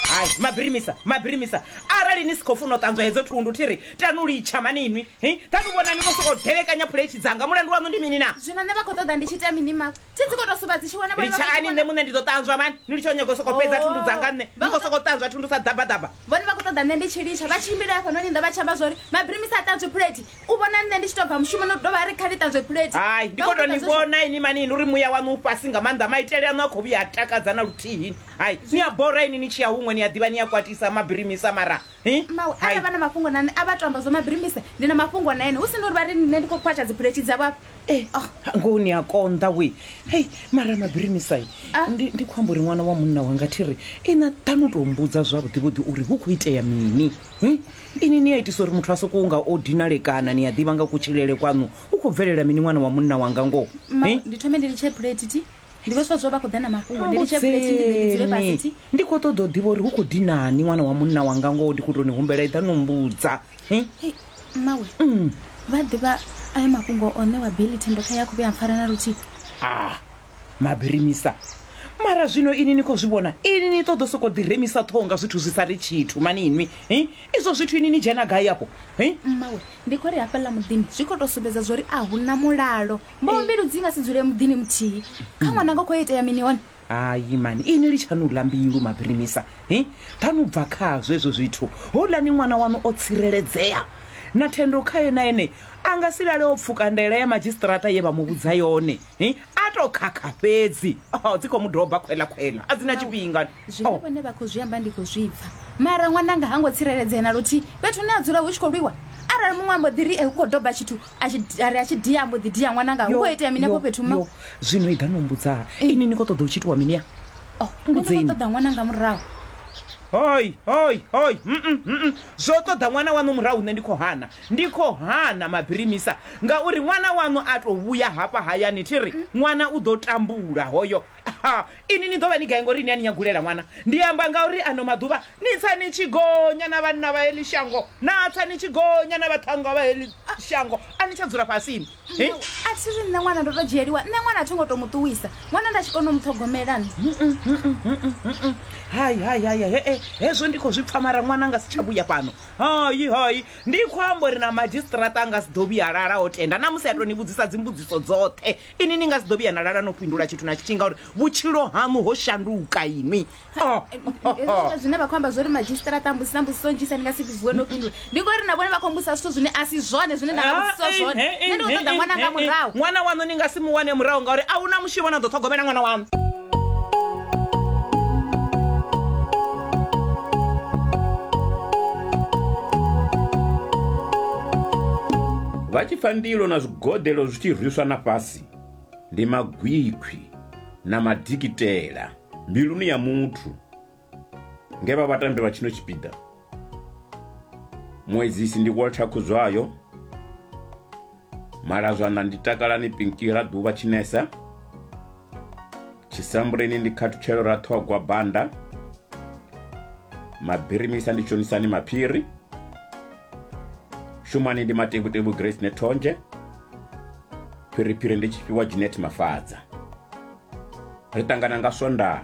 Hai, mabirimisa, mabirimisa. Arali ni si khou funa u ṱanzwa hedzo thundu thi ri tanu litsha mani inwi. Hi, ṱanu vhona ni vho sokou delekanya phuletshi dzanga. Mulandu waṋu ndi mini naa? Zwino nṋe vha khou ṱoḓa ndi tshi ita mini ma? Thi dzi khou tou suvha dzi tshi wona vhone vha khou Litshani nṋe vhona. muṋe ndi ḓo ṱanzwa mani. Ni litshe u nyaga u sokou fhedza Oh. thundu dzanga nṋe. Ni khou sokou ṱanzwa thundu sa ḓabaḓaba. Vhone vha khou ṱoḓa nṋe ndi tshi litsha vha tshimbile hafhanoni nnḓa vha tshi amba zwa uri mabirimisa a ṱanzwe phuleti. u vhona nṋe ndi tshi to bva mushumoni u dovha a ri kha ni ṱanzwe phulethi hai ndi khou tou ni vhona ini mani ini uri muya waṋu u fhasi nga maanḓa maitele aṋu a khou vhuya a takadza na luthihi hai ni a bora ini ni tshi ya huṅwe ni a ḓivha ni a kwatisa mabirimisa mara mawe arali vha na mafhungo na nṋe a vha to amba zwo mabirimisa ndi na mafhungo na ene hu si na uri vha ri nṋe ndi khou khwatsha dziphulethi dzavho afha eh, ah. ngoho ni a konḓa we hei mara mabirimisai ah. ndi khou amba uri ṅwana wa munna wanga thi ri ina ḓa no tou mbudza zwavhuḓivhuḓi uri hu khou itea mini Hi, ini ni a itisa uri muthu a sokou nga o dinalekana ni a ḓivha nga kutshilele kwaṋu u khou bvelela mini ṅwana wa munna wanga ngoho Ma, Hi? ndi thome ndi litshe plate ti ndi vho swa zwo vha khou ḓa na mafhungo ndi litshe plate ndi ḓe ndi dzule fhasi ti Ambudzeni. ndi khou ṱoḓa u ḓivha uri hu khou dinani ṅwana wa munna wanga ngoho ndi khou tou ni humbela eḓa no mbudza Hi? Hei, mmawe vha ḓivha ayo mafhungo o ṋewa beli thendo kha ya khou vhuya mpfara na luthihi ah Mabirimisa, Mara zwino ini ni khou zwi vhona? Ini ni ṱoḓo sokou ḓi remisa ṱhoho nga zwithu zwi sa ri tshithu mani inwi hi? Izwo zwithu ini ni dzhena gai afho hi? Mmawe, Ndi khou ri hafhaḽa muḓini zwi khou tou sumbedza zwo ri a hu na mulalo. Mboho mbilu dzi nga si dzule muḓini muthihi. Kha ṅwananga khou itea mini hone? Hai mani ini litshani u ḽa mbilu Mabirimisa hi? Ḓani u bva khazwo hezwo zwithu. Houḽani ṅwana waṋu o tsireledzea na thendo khae na ene a nga si lale o pfuka ndaela ya madzhisiṱiraṱa ye vha mu vhudza yone. Hi, a to khakha fhedzi oh, dzi khou mu doba khwela khwela a dzi na tshifhinga zwine Oh, vhone vha khou zwi amba ndi khou zwi pfa mara ṅwananga ha ngo tsireledzea na luthihi fhethu hune a dzula hu tshi khou lwiwa arali muṅwe ambo ḓi ri e hu khou doba tshithu a tshi- a ri a tshi dia ambo ḓi dia ṅwananga hu yo, khou itea mini yo, afho fhethu ma yo. zwino i ḓa no mbudzaa ini ni khou ṱoḓa u tshi itiwa mini ya Oh, nṋe ndi khou mbudzeni. ṱoḓa ṅwananga murahu hoi hoi hoi mm, mm, mm, mm. zwo ṱoḓa ṅwana waṋu murahu nṋe ndi khou hana Ndi khou hana mabirimisa ngauri ṅwana waṋu a tou vhuya hafha hayani thi ri, Ṅwana u ḓo tambula hoyo. Ha! Inwi ni ḓo vha ni gai ngauri ni a ni nyagulela ṅwana? Ndi amba ngauri ano maḓuvha ni tsa ni tshi gonya na vhanna vha heḽi shango, na tsa ni tshi gonya na vhaṱhannga vha heḽi shango, a ni tsha dzula fhasini. He! A thi ri nṋe ṅwana ndo tou dzhieliwa, nṋe ṅwana a thi ngo tou mu ṱuwisa, ṅwana nda tshi kona u mu ṱhogomela nṋe. Hai, hai, hai, hai, he-e, hezwo ndi khou zwi pfa mara ṅwana a nga si tsha vhuya fhano. hayi hayi ndi khou amba uri na madzhisiṱiraṱa a nga si ḓo vhuya lala o tenda na musi a tou ni vhudzisa dzimbudziso dzoṱhe ini ni nga si ḓo vhuya na lala no fhindula tshithu na tshithihi ngauri vhutshilo haṋu ho shanduka inwi oh, oh, oh. zwine vha khou amba zwo ri madzhisiṱiraṱa mbusi na mbudziso nnzhisa ni nga si vhuwe no fhindula ndi ngori na vhone vha khou mbusa zwithu zwine a si zwone zwine nda vhudziso ah, zwone nṋe ndi khou ṱoḓa ṅwana nga murahu ṅwana waṋu ni nga si mu wane murahu ngauri a hu na mushumo na ḓo ṱhogomela ṅwana waṋu vha tshi pfa ndilo na zwigodelo zwi tshi rwiswa na fhasi ndi magwikhwi na madikitela mbiluni ya muthu Nge vha vhatambi vha tshino tshipiḓa, Muedzisi ndi Walter Khuzwayo, Malazwana ndi Takalani Pinki Raḓuvha Tshinesa, Tshisambuleni ndi Khathutshelo Raṱhogwa Banda, Mabirimisa ndi Tshonisani Maphiri, Shumani ndi Matevhutevhu Grace Nethonzhe, Phiriphiri ndi Tshifhiwa Jeanette Mafadza. Ri ṱangana nga Swondaha.